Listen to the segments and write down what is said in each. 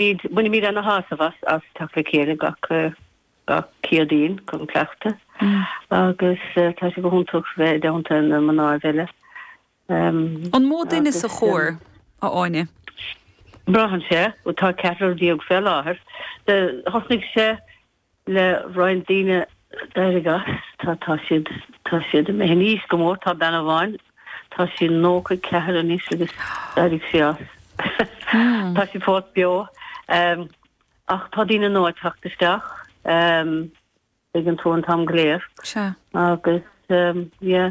Bainimid an-shásamh as teacht le chéile gach Céadaoin chun cleachtadh agus tá sé go hiontach bheith i dteannta na mná eile. An mó duine sa chór, a Áine? Braitheann sé, tá ceathrar déag fé láthair. Thosnaigh sé le roinnt daoine d'éirigh as, tá, tá siad, tá siad ag imeacht in aois go mór, tá bean amháin, tá sí nócha a ceathair anois agus d'éirigh sí as. Tá sí fós beo ehm ach tá daoine nua ag teacht isteach ehm tuigeann tú an t-am go léir Sea. agus ehm yeah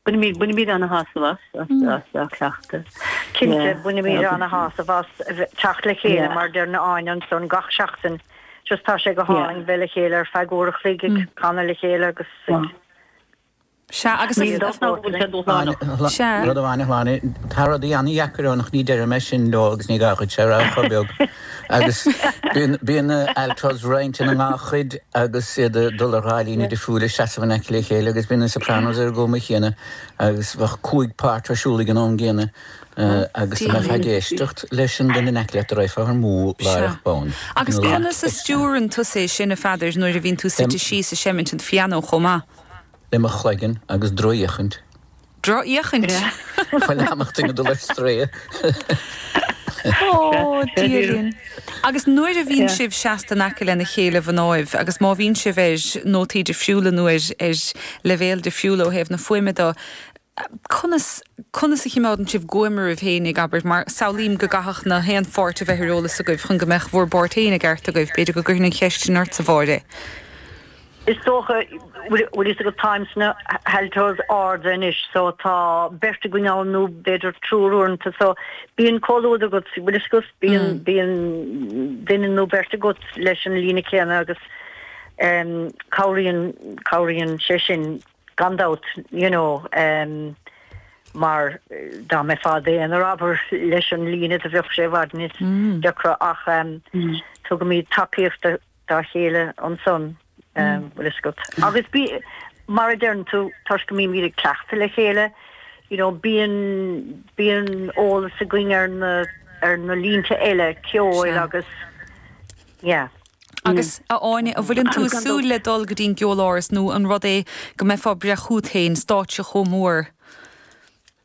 Bainimid, bainimid ana shásamh as, as, as a chleachtadh. Cinnte, Yeah. bainimid Yeah. ana shásamh as a bheith, teacht le chéile Yeah. mar deir na Áine ansan gach seachtain. Just tá sé go Yeah. hálainn bheith le chéile ar feadh uair a chloig ag canadh le chéile agus ag Maith. Sea, agus Níl a, a, dóigh nach bhfuil sé dúshlánach. Áine, Sea. rud amháin a shlí, tá rudaí ana-dheacair ann ach ní deirim é sin leo agus ní gá é a rá chomh beag. Agus bíonn, bíonn altos roinnte ina ndhá chuid agus iad ag dul ar dhá líne difriúil ag seasamh in aice le chéile agus bíonn na sopranos ar an gcuma chéanna agus bheadh cúig pháirt ar siúl ag an am gcéanna agus dá mbeifeá ag éisteacht leis an duine in aice leat do raghfá ar amú láithreach bonn. Agus conas a stiúrann tusa é sin, a Pheadair, nuair a bhíonn tú suite síos ag seimint an phianó chomh maith? Le mo chloigeann agus drochfhéachaint. drochfhéachaint. Dá mbeadh duine ag dul ar strae. Ó, Dia linn. Agus nuair a bhíonn sibh seasta in aice lena chéile mhnáibh agus má bhíonn sibh ar nótaí difriúla nó ar leibhéal difriúil ó thaobh na fuaime de, conas, conas a chimeádann sibh guaim oraibh féin agus, abair, mar samhlaím go gcaithfeadh na haon pháirt a bheith ar eolas agaibh chun go mbeadh bhur bpáirt féin i gceart agaibh, b'fhéidir go gcuirfinn an cheist sin ort-sa, Mháire. Is dócha, bhfuil fhios agat, táim sna haltos arda anois so tá beirt againn ann nó b'fhéidir triúr uaireanta so bíonn comhluadar agat, bhfuil fhios agat, bíonn, bíonn duine nó beirt agat leis an líne céanna agus em cabhraíonn, cabhraíonn sé sin gan dabht you know em mar dá mbeifeá d'aonar abair leis an líne do bheadh sé i bhfad níos deacra ach em tugaimid tacaíocht dá dá chéile ansan, bhfuil 'fhios agat. Agus bí, mar a deireann tú, toisc go mbímid ag cleachtadh le chéile, you know, bíonn, bíonn eolas againn ar na, ar na línte eile ceoil agus, yeah. Agus, a Áine, an bhfuil, ann tú ag súil le dul go dtí an gCeoláras nó an rud é go mbeifeá ag breith chugat féin, stáitse chomh mór?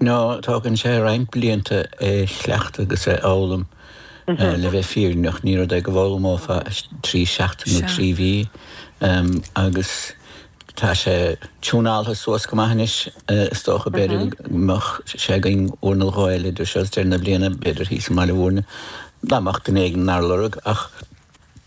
nó tógann sé roinnt blianta é a chleachtadh agus é a fhoghlaim. Le bheith fírinneach, ní rud é go bhfoghlaimeofá i dtrí seachtaine nó trí mhí, agus tá sé tiúnáltha suas go maith anois. Is dócha, b'fhéidir, go mbeadh sé againn uair nó dhó eile idir seo is deireadh na bliana, b'fhéidir thíos i mBaile Mhúirne, dá mbeadh duine éigin inár lorg ach.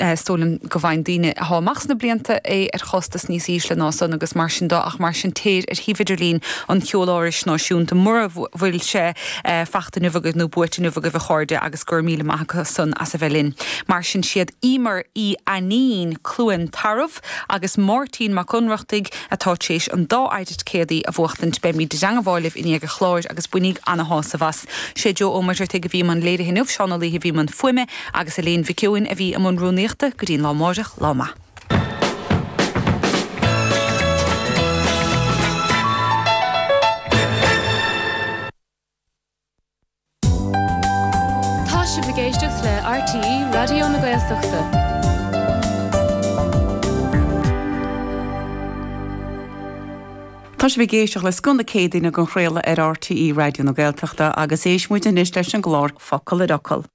is dóigh liom go bhfaigheann daoine atá amach sna blianta é ar chostas níos ísle ná san agus mar sin de ach mar sin téir ar shuíomh idirlín an Cheolárais Náisiúnta mura bhfuil sé fachta inniu agaibh nó buaite inniu agaibh a chairde agus go raibh míle maith acu san as a bheith linn mar sin is iad Emer Uí Ainín, Cluain Tarbh. Bhreatimeacht agus Máirtín Mac Ionnrachtaigh atá tréis an dá thicéad céilí a bhuachtaint, beimid i dteangabháil libh i ndiaidh a chláir agus bainigh ana-shásamh as. Sé Joe Ó Muirtheartaigh a bhí i mbun léirithe inniu, Seán Ó Laoithe a bhí i mbun fuaime agus Elaine Mhic Eoin a bhí i mbun rúnaíochta. Go dtí an lá amáireach, lá maith. Tá sibh ag éisteacht le RTÉ Raidió na Gaeltachta. Tá sibh ag éisteacht le Scoth na Céadaoine dhá chraoladh ar RTÉ Raidió na Gaeltachta agus éistfidh muid anois leis an gclár Focal ar Fhocal.